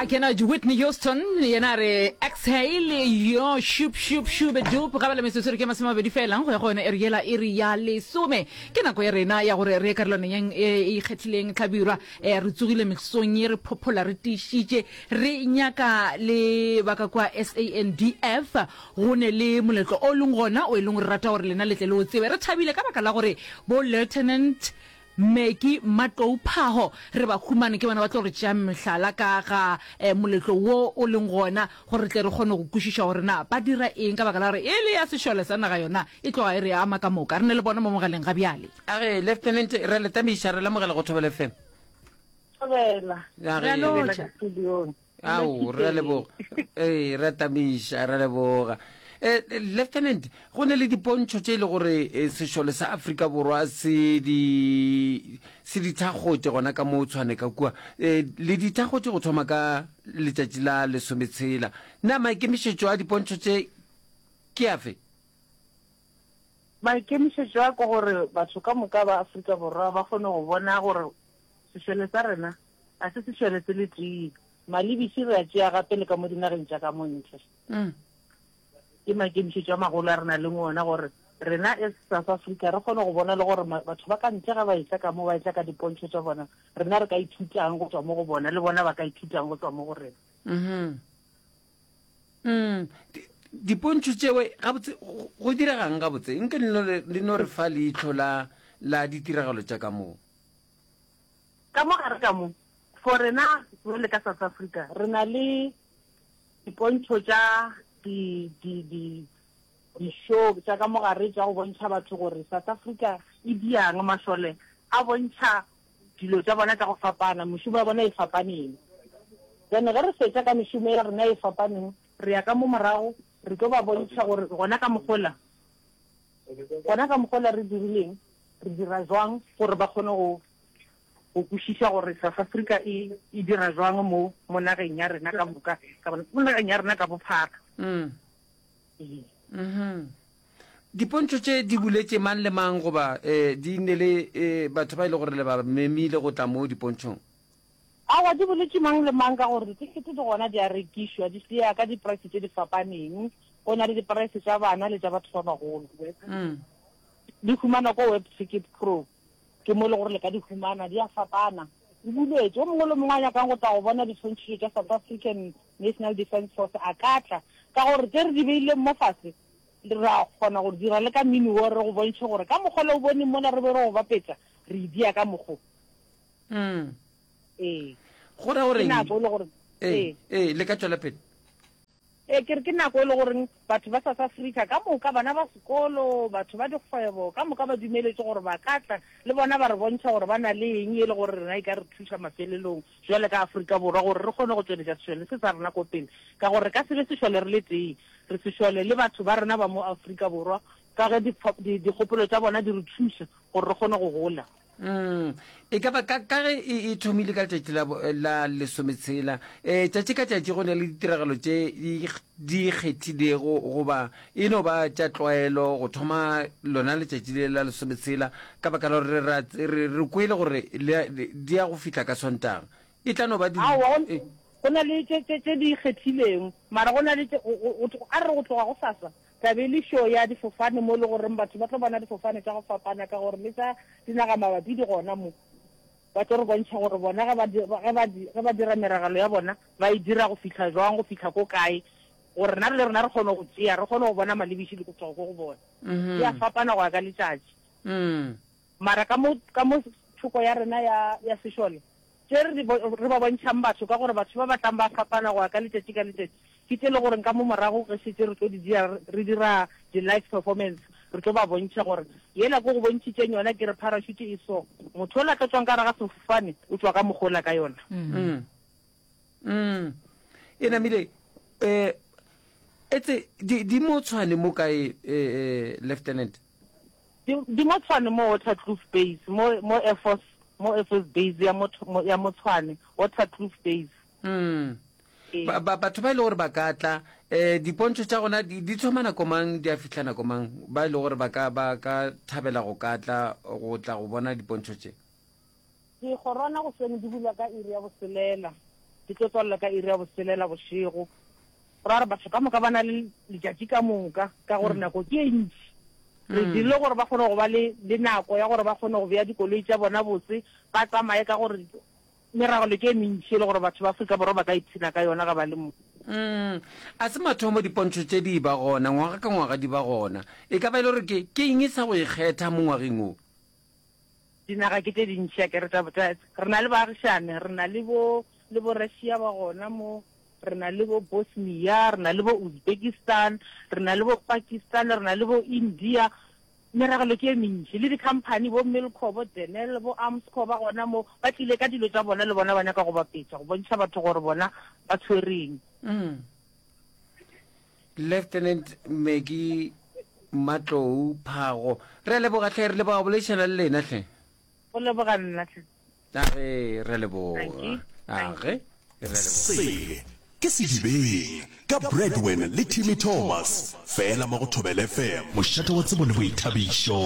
a kena whitney houston yena a re exhale yo shup shup shube dup ga bala metsotso re ke masome mabedi felang go ya go yone e re yela e re ya lesome ke nako ya rena ya gore re ye karolwaneng e e ikgethileng tlhabirwa eh, re tsogile mesong ye re phophola re tiišitše re nyaka le baka kwa sandf go ne le moletlo o leng gona o e leng gore rata gore lena letle le o tsebe re thabile ka baka la gore bo lieutenant Meki, Mmatlou, Phaho, re ba humane ke bona ba tlo re tšeang mehlala ka ga moletlo wo o leng gona gore re tle re kgone go kwešiša gore na ba dira eng ka baka la gore e le ya sešole sa naga yona e tloga e re ama ka moka. Re ne le bona mo mogaleng ga bjale. Age, Lieutenant, re a le tameiša, re lamogela go Thobela FM. Thobela, re a lotšha. ao re a leboga ee re tamiša re leboga Eh, eh, lieutenant go ne le dipontšho tše e le gore eh, sešole sa afrika borwa se di se di thakgotše gona ka mo tshwane ka kua Eh, le di thakgotše go thoma ka letšatši la lesometshela na maikemišetšo a dipontšho tše ke afe maikemišetšo a ko gore batho ka moka ba afrika borwa ba kgone go bona gore sešole sa rena Ga se sešwene se le tee. Malebiši re a tšea gape le ka mo dinageng tša ka montle. Mm. Ke makemišetšo a magolo a re na leng ona gore rena e South Africa re kgone go bona le gore batho ba ka ntle ga ba etla ka mo ba etla ka dipontšho tša bona rena re ka ithutang go tswa mo go bona le bona ba ka ithutang go tswa mo go rena mm-hmm. mm. dipontšho tšewe gabotse go diregang gabotse nke le no re fa leitlho la ditiragalo tša ka moo Ka mo gare ka mo, for rena jwale ka South Africa, re na le dipontšho tša di, di, di, di-show tša ka mo gare tša go bontšha batho gore South Africa e bjang. Mašole a bontšha dilo tša bona ka go fapana, mešomo ya bona e fapaneng. Then ge re fetša ka mešomo ya rena e fapaneng, re ya ka mo morago re tlo ba bontšha gore gona ka mogola, gona ka mogola re dirileng, re dira jwang gore ba kgone go. go kwešiša gore South Africa e e dira jwang mo mo nageng ya rena ka moka ka bona mo nageng ya rena ka bophara mm. ee mm-hmm. dipontšho tše di buletše mang le mang goba um di nne le um batho ba e le gore le ba memile go tla mo dipontšhong awa di boletše mang le mang ka gore ditekete di gona di a rekišwa di seya ka diprice tše di fapaneng go na le diprice tša bana le tša batho ba bagolo mm. di humana ko web ticket pro Ke mo e le gore le ka di humana, di a fapana. Di buletšwe. Yo mongwe le mongwe a nyakang go tla go bona diswantšhitšo tša South African National Defence Force a ka tla, ka gore tše re di beileng mo fase re a kgona go di dira le ka mmino wo, re go bontšhe gore ka mokgwa le o boneng mola re be re go bapetša, re e dia ka mokgo. Umm. Ee. Go ra o reng? Ke nako e le gore. Ee, ee, le ka tšwela pele. Ee, ke re ke nako e le goreng batho ba South Africa ka moka, bana ba sekolo, batho ba dikgwebo ka moka ba dumeletše gore ba ka tla le bona ba re bontšha gore ba na le eng e le gore rena e ka re thuša mafelelong bjale ka Afrika Borwa gore re kgone go tšweletša sešole se sa rena ko pele ka gore re ka se be sešole re le tee, re sešole le batho ba rena ba mo Afrika Borwa ka ge dikgopolo tša bona di re thuša gore re kgone go gola. Umm, e ka ba ka, ka ge e, e thomile ka letšatši la, la lesometshela, e, tšatši ka tšatši go na le ditiragalo tše di, di kgethilego goba e no ba tša tlwaelo go thoma lona letšatši le la lesometshela, ka baka la gore re, re, re, re kwele gore le, le, di ya go fihla ka Sontaga. E tla no ba di, Aowa, go, e. go na le tše, tše, tše di kgethilego, mara go na le tše, go, go, go, a re re go tloga gosasa, Thabelišo ya difofane mo e le goreng batho ba tlo bona difofane tša go fapana ka gore le tša dinaga mabapi di gona mo. Ba tlo re bontšha gore bona ge ba, ge ba, ge ba dira meragelo ya bona ba e dira go fihla jwang, go fihla ko kae gore rena le rena re kgone go tšea, re kgone go bona malebiši le go tšwa ko go bona. Di a fapana go ya ka letšatši. Mara ka mo, ka mo thoko ya rena ya, ya sešole, tše re di bo, re ba bontšhang batho, ka gore batho ba ba tlang ba fapana go ya ka letšatši ka letšatši, ke tše e le gore ka mo morago ge šetše re tlo di dira, re dira di-live performance, re tlo ba bontšha gore yela ko go bontšhitšeng yona, ke re parachute e so, motho yola a tlo tšwang ka gare ga sefofane o tšwa ka mokgwa ola ka yona. Mm. Mm. E namile, eh, etse di, di mo tshwane mo kae, eh, eh, Lieutenant? Di, di mo Tshwane mo Waterkloof Base, mo, mo Air Force, mo Air Force Base ya mo, mo, ya mo Tshwane, Waterkloof Base. Mm. Ee. Ba, ba, batho ba e le gore ba ka tla, eh, dipontšho tša gona di, di thoma nako mang, di a fihla nako mang, ba e le gore ba ka, ba ka thabela go ka tla, go tla go bona dipontšho tše? Dikgorwana goseng di bula ka iri ya boselela, di tlo tswalela ka iri ya boselela bošego. Go ra gore batho ka moka ba na le letšatši ka moka ka gore nako ke e ntši. Re dirile gore ba kgone go ba le le nako ya gore ba kgone go bea dikoloi tša bona botse, ba tsamaye ka gore meragelo ke e mentši e le gore batho ba Afrika Borwa ba ka ipshina ka yona ge ba le mo. A se mathomo dipontšho tše di eba gona, ngwaga ka ngwaga di ba gona. E ka ba e le gore ke ke eng e sa go e kgetha mo ngwageng wo? Dinaga ke tše dintši a ke re tša, tša, re na le baagišane, re na le bo, le bo Russia ba gona mo, re na le bo Bosnia, re na le bo Uzbekistan, re na le bo Pakistan, re na le bo India, meragelo ke e mentši. Le di-company, bo Milcor, bo Denel, bo Armscor ba gona mo, ba tlile ka dilo tša bona le bona ba nyaka go bapetša, go bontšha batho gore bona ba tshwereng. lieutenant meki matlou phago re a leboga tlhe re leboga boledišana le lena tlhe go leboga nna tlhe age re leboga age sele ke sedibeng ka bradwin le timmy thomas fela mo go thobele fm mošate wa tsebo le boithabišo